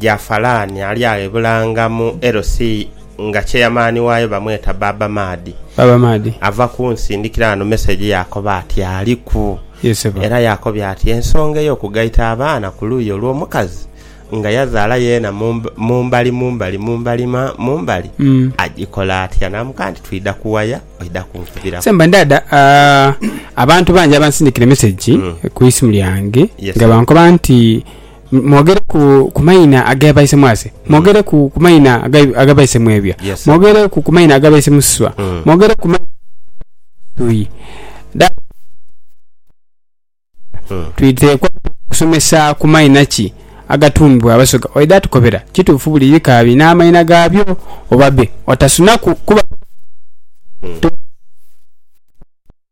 Jafalani ali agho e Bulanga mu LC. nga cheyamaani waayo bamweta Baaba Maadi. Baaba Maadi. Ava kunsindikira ghano meseji yaakoba ati aliku. Ye ssebo. Era yaakobya ati ensonga ey'okugaita abaana ku luuyi olw'omukazi nga yazaala yeena mu mu mbali mu mbali mu mbali ma mu mbali agikola atya. Naamugamba nti twidha kuwaya oidha kunkubiraku. Semba ndaada abantu bangi abansindikira emeseji ku isimu lyange nga bankoba nti Mwogere ku, ku maina aga baise mwase. Mwogere ku, ku maina aga, aga baise mwebya. Yes, sir. Mwogere ku, ku maina aga baise mususwa. Mm. Mwogere ku maina tui. Da, Mm. twiteekwa kusomesa ku maina ki agatuumibwa Abasoga. Oidha tukobera? Kituufu buli bika birina amaina gaabyo, oba be. Otasunaku kuba.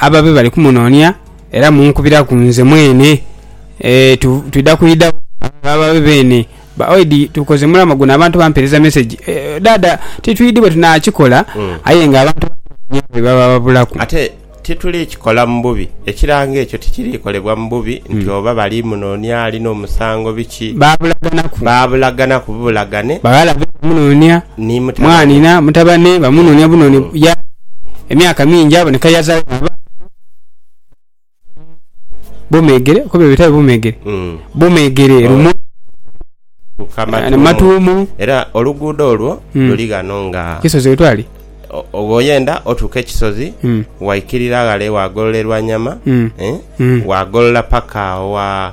ababe bali kumunoonia era munkubiraku nze mwene. Ee, tu, twidha kwidha ababe beene. Ba, oidi tukoze mulamwa guno abantu bampeereza mesegi. E, Dhaadha, titwidhi bwe tunaakikola, aye nga abantu bamunoonia bwe baba babulaku. Ate tituli kikola mu bubi. Ekirango ekyo tikiriikolebwa mu bubi nti oba bali munoonia, alina omusango, biki. Baabulaganaku. Baabulaganaku bubulagane. Baghala be kumunoonia. ni mutabane. Mwanhina, mutabane, bamunonia bunoni yaali emyaka mingi aboneka yazaala abaana babiri Bumeegere, okoba ebyo bitali Bumeegere? Mm. Bumeegere, Oh. Lumo, Tuka na Matuumu. Matuumu, Era oluguudo olwo Mm. luli ghano nga Kisozi wetwali. o- o- bw'oyenda otuuka ekisozi Mm. waikirira ghale waagolola erwanyama Mm. eh, Mm. waagolola paka wa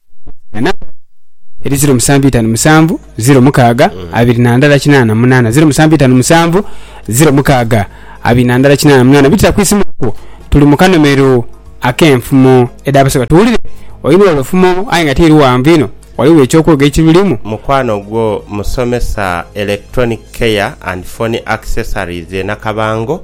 na namba yaibwe eri ziro musanvu itanu musanvu ziro mukaaga abiri na ndala kinaana na munaana ziro musanvu itanu musanvu ziro mukaaga abiri na ndala kinaana na munaana bitira ku isimu okwo tuli mu kanomero ak'enfumo edh'abaseba tuwulire oidhi wala ofumo aye nga tiri ghanvu inho ghaligho eky'okwoga ekirulimu. Mukwano gwo musomesa Electronic Care and Phone Accessories e Nakabango.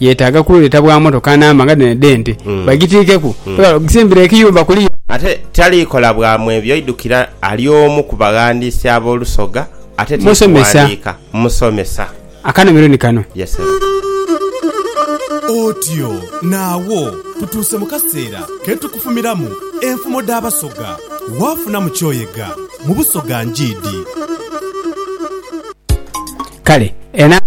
Yetaaga kululeta bwa motoka namba nga dhino edh'ente, bagitiikeku ebala okusimbira ekiyumba ku liyo. Ate tali kola bwa mwebyo idukira ali omu ku baghandiisi ab'olusoga ate ti kughandiika. Musomesa. Akanhumiro ni kano. Yes sebo. Otyo naagho tutuuse mu kaseera ke tukufumiramu enfumo dh'Abasoga. Waafunamu ky'oyega mu Busoga njiidi. Kale enamba.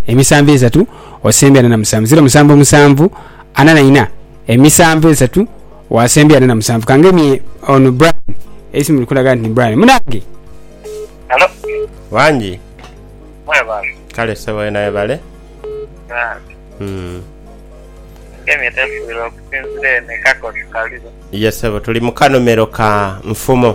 emisanvu esatu osembye ana na musanvu ziro musanvu musanvu ana na ina emisanvu esatu wasembye ana na musanvu kangemye ono Brian eisimu liri kulaga nti ni Brian munange Hello, Wangi. mwebale. Kale sebo wena webale. Ah, Mm. Kemi tefuirwa okusinzira eno ekakosi kaliba. Ye sebo tuli mu kanomero ka nfumo.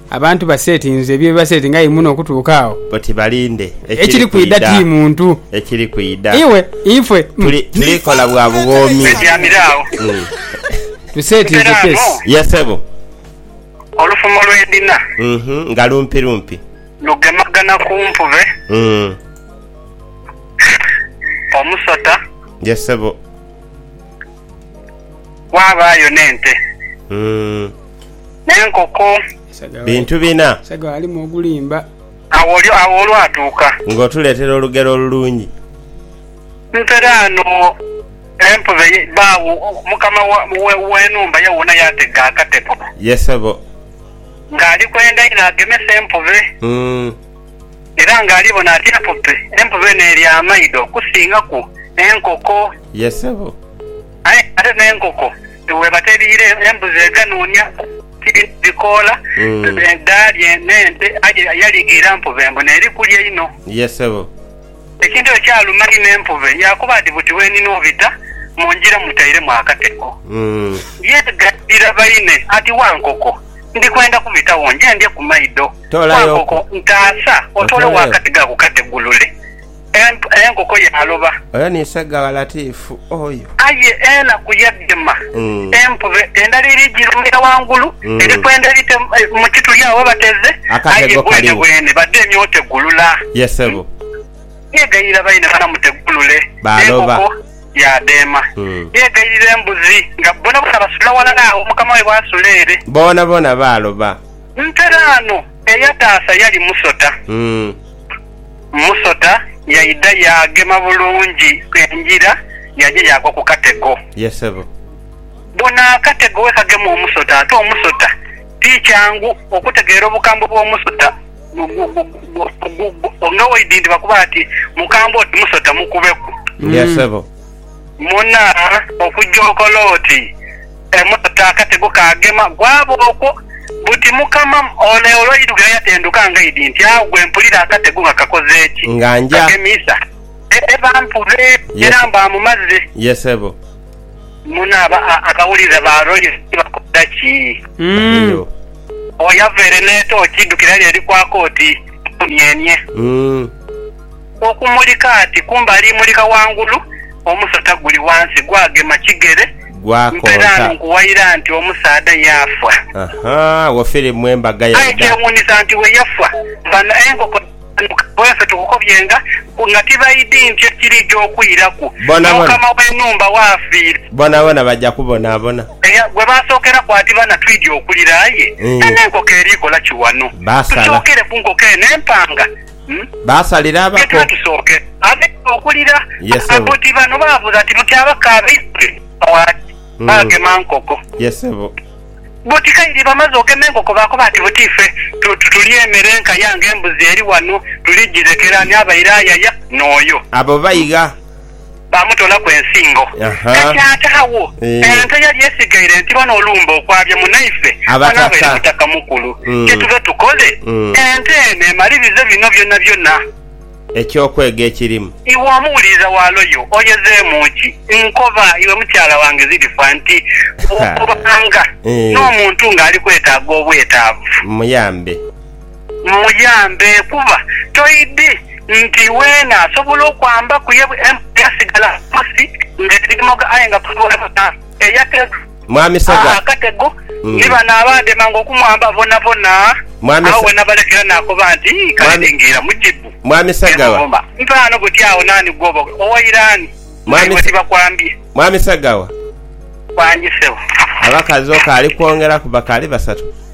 Abantu basetinze bye basetinga aye muno okutuuka agho. Oti balinde ekiri kwidha ti muntu. Ekiri kwidha. Iwe, ife. Tuli, tuli kola bwa bughoomi. Tutyamire agho. Mm. Tusetinze kesi. Ye sebo. Olufumo lwe ndina. Mhm, nga lumpi lumpi. Lugemagana ku mpube. Mm. Omusota. Ye sebo. Ghabaayo n'ente, n'enkoko. Bintu bina. Agho olwatuuka. Ng'otuleetera olugero olulungi. Nteraano empube baagho. Mukama w'enhumba ye wuuna yaatega akatego. Ye ssebo. Ng'ali kwenda inho agemesa empube. era nga ali bona ati empupe, empupe eno eri amaido okusingaku enkoko. Ye sebo. Aye ate n'enkoko bweba teriire embuzi eganuunia kirina ebikoola dhaalye n'ente aye yaliga ira mpupe mbu n'eri kulya inho. Ye sebo. Ekintu ekyo kyaluma inho empube, yaakoba ati, Buti bwe nina obita mu ngira mutairemu akatego. Yeegaira baine ati, Wankoko, ndi kwenda kubitagho nje ndye ku maido. Wankoko, ntaasa otoole wakati gha ku kategulule. Enkoko yaaloba. Omutukuvu oyo. Aye enaku yadhima, empube endala eri jirumira wangulu eri kwenda ebite mu kituli agho ghebateze, aye bwenebwene badha emye otegulula. Yeegayirira baine bana mutegulule. Enkoko yaadheema, yeegayirira embuzi nga bonabona basula walala agho mukama waibwe asula ere. Bonabona baaloba. Nteraano eyataasa yali musota. Musota yaidha yaagema bulungi engira yaja yaagwa ku katego. Ye sebo. Bona akatego we kagema omusota. Ate omusota ti kyangu okutegeera obukambwe bw'omusota nga waidhi nti bakuba bati mukambwe oti musota mukubeku. Ye sebo. Muna okugya okole oti. Emmotoka akatego kaagema gwaba okwo buti mukama ole olwairuga yatenduka nga idi nti agho gwe mpulira akatego nga kakoze ki? Nga nja. Kagemiisa e e bampube Ye. era mbaamumaze. Ye sebo. Muno aba a abawulira ba Royal City bakola ki? Baliyo. Oyo avaire n'etooki idhukira lyo eri kwaka oti, Mpuunienie. Umm. Okumulika ati kumbe alimulika ghangulu, omusota guli ghansi gwagema kigere, mpereano Gwakonka. nkuwaira nti omusaadha yaafa. Ahaa, wo firimu embaga ya Aye Ida. kyewuunisa nti bwe yafa, bano enkoko dhaanuka bwefe tukukobyenga ku nga tibaidhi nti ekiriidha okwiraku Bonabona. n'omukama w'enhumba w'afiire, Bonabona baja kubonabona. eya gwe baasookeraku ati bana twidhi okulira aye Ii. eno enkoko eri kola ki wano? Basala. Tusookere ku nkoko eno empanga. Baasalira abako. Tusooke abeeru okulira abuti bano baabuuza ati, Buti abako abaidhule bava wa ki? Baagema nkoko. Buti kaire bamaze ogema enkoko baakoba ati, Buti ife tulya emere enka yange embuzi eri wano, tuligirekera ani abaire ayaya n'oyo? Abo baigha. baamutoolaku ensingo. Ahaa. Ekyataagho, Eeh. ente yali esigaire ntiba n'olumbe okwabya munaife Abataka. anabeere Mutaka Mukulu. Mm. Kye tuve tukole, Mm. ente eno emalirize bino byonabyona. Eky'okwega ekirimu. Iwe omuwuliriza wa Loyo, oyezeemu ki? Nkoba iwe mukyala wange Zirifa nti, Bw'obanga Eeh. n'omuntu ng'ali kwetaaga obwetaavu. Muyambe. Muyambe kuba toidhi nti weena asobola okwamba kuye yasigala ghansi nga erimoga aye nga kuliwo yena eyatega akatego ni bano abaagemanga okumwamba boonaboona agho wenabalekera naakoba nti, Kale ndingiira mu kibu ne muvuma. Ntaano buti agho naani gw'oba owaire ani naibwe tibakwambye? Wangi ssebo. Abakazi okaali kwongeraku bakaali basatu.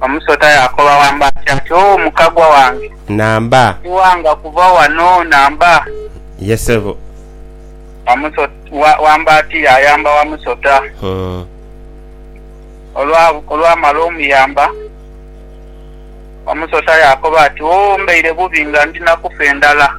Omusota yaakoba wamba ati, ati, O mukagwa wange! Namba. Tiwanga kuva wano, namba. Ye sebo. Wamusota, wamba ati, Yaayamba wamusota. Olwa, olwamala omuyamba, omusota yaakoba ati, O, mbaire bubi nga ndi na kufa endhala.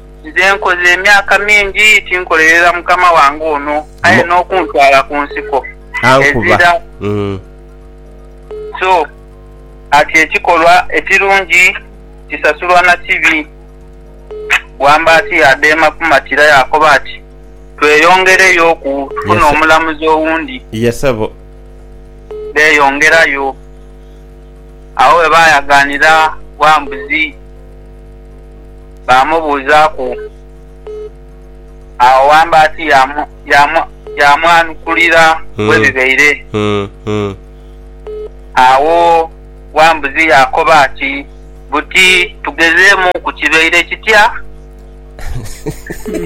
Nze nkoze emyaka mingi tinkolerera mukama wange ono aye n'okuntwala ku nsiko ezira so ati ekikolwa ekirungi kisasulwa na kibi. Bwambaati yaadheema kumatira yaakoba ati, Tweyongereyoku tufune omulamuzi owundi. Beeyongerayo. Agho bwe baayagaanira Wambuzi. baamubuuzaaku. Agho Wambaati yaamwanukulira bwe bibaire. Agho Wambuzi yaakoba ati, Buti tugezeemu ku kibaire kitya?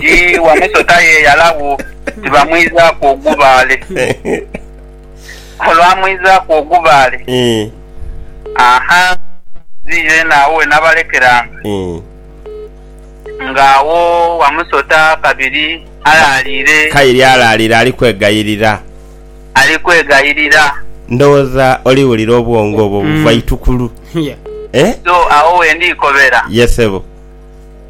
Ti wamusota yeeyalagho, tibamwizaaku ogubaale. olwamwizaaku ogubaale, aha, nziire eno agho we nabalekeranga, ng'agho wamusota kabiri alaalire. Kaire alaalire ali kwegayirira. Ali kwegayirira. Ndowooza oliwulira obwongo obwo buva itukulu. Eh? So, agho we ndiikobera. Ye, ssebo.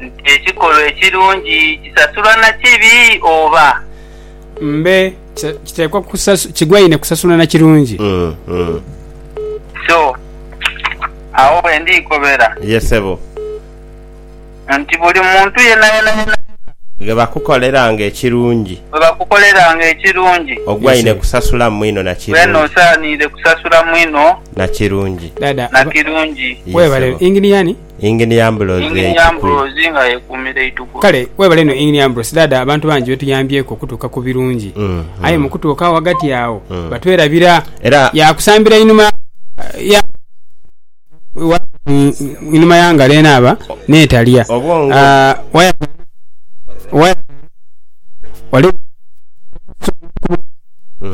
Nti ekikolwa ekirungi kisasulwa na kibi, oba. Mbe. Kisa- kiteekwa kusasu- kigwaine kusasula na kirungi Mm, mm. so agho bwendiikobera Ye sebo. nti buli muntu yenayena yena Ghe bakukoleranga ekirungi bwebakukoleranga ekirungi ogwaine Yes, kusasula mwino na weena kirungi. osaaniire kusasula mwino dada na aba- kirungi Ye webale sebo. ingini yani Engineer Ambrose Ekiku. Kale webale inho Engineer Ambrose dhaadha abantu bangi betuyambyeku okutuuka ku birungi aye mu kutuuka ghagati agho batwerabira yaakusambira inhuma ya inhuma ya ngalo enaaba n'etalya wire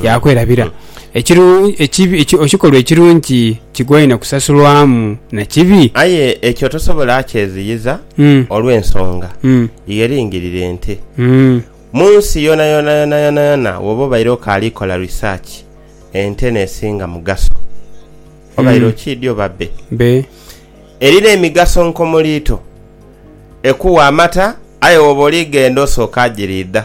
yaakwelabira. Ekikolwa ekirungi kigwaine kusasulwamu na kibi? Aye ekyo tosobola kyeziyiza olw'ensonga ye eringirire nti, mu nsi yonayona yonayona woba obaire okaali kola risaaki, ente n'esinga mugaso. Obaire okiidhi oba bbe? Eri n'emigaso nkomuliito. Ekuwa amata aye woba oli ghenda osooka giriidha.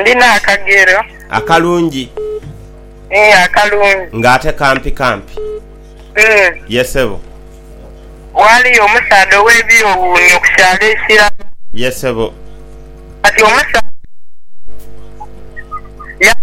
Ndina akagero. Akalungi. Ii akalungi. Nga ate kampi kampi. Ii. Ye sebo. Waaliyo omusaadha ow'ebyowuunyo ku kyalo ekirala. Ye sebo. Kati omusaadha ono yali.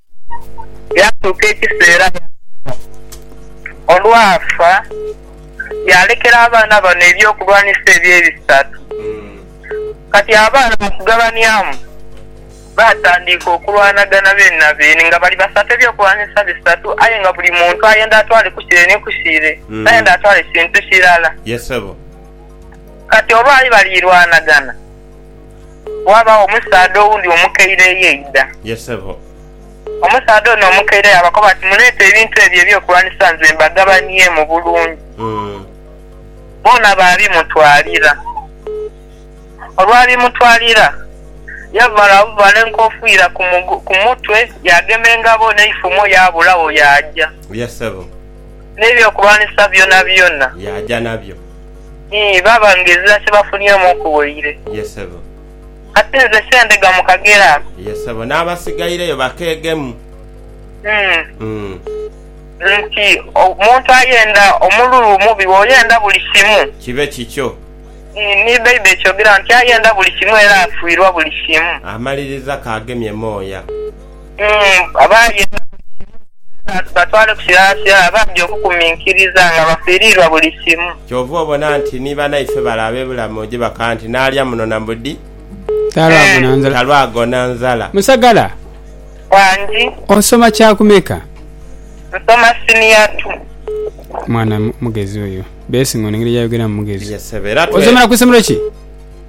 Yaatuuka ekiseera yaafa. Olwafa, yaalekera abaana bano eby'okulwanisa ebyo ebisatu. Kati abaana mu kugabanyamu, baatandiika okulwanagana beene na beene nga bali basatu eby'okulwanisa bisatu aye nga buli muntu ayenda atwale ku kire ni ku kire, tayenda atwale kintu kirala. Kati olwali baliirwanagana. Waabagho omusaadha owundi omukaire eyaidha. Ye sebo. Omusaadha ono omukaire yaabakoba ati, Muleete ebintu ebyo eby'okulwanisa nze mbagabaniemu bulungi. Boona baabimutwalira. Olwabimutwalira, yamala abuvaala enkofiira ku mutwe, yaagema engabo n'eifumo yaabulagho yaaja. Ye sebo. N'eby'okulwanisa byonabyona. Yaaja nabyo. Ii, Baaba ngezira kye bafunyeemu okuwoire. Ye ssebo. Kati nze sendhega mu kagero ako. Ye ssebo. N'abasigaireyo bakeegemu. Ii. Nti omuntu ayenda omululu omubi w'oyenda buli kimu. Kibe kikyo. Ii, Ni Baibuli ekyogera nti ayenda buli kimu era afuirwa buli kimu. Amaliriza k'agemye mooya. Abaali embaga basibe nga batwale ku kilaasya, abandi okukuminkiriza nga bafiiriirwa buli kimu. Kyova obona nti ni banaife bale abebulamu oje bakaa nti nalya muno na mbudi talwagona nzala. Musagala, Wangi. osoma kyakumeka? Nsoma siniya tu. Mwana mugezi oyo. Blessing ono engeri gyayogeramu mugezi. Ye ssebo era twe. Osomera ku isomero ki?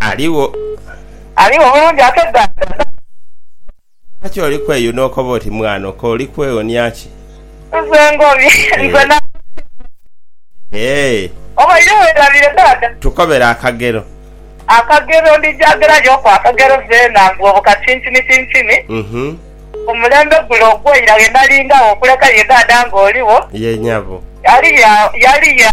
Aligho. Aligho mulungi ate dada. Lwaki oli kweyuna okoba oti mwana oka oli kwewonia ki? Nze ngobye nze na. Eehh. Obaire werabire dada. Tukobere akagero. Akagero ndija gera yo ku akagero zena mbu obo kacincini cincini. Uhmm. Omulembe gule ogwo ira ghe nali ngagho okuleka ye dada nga oligho. Ye nyabo. Yali ya yali ya.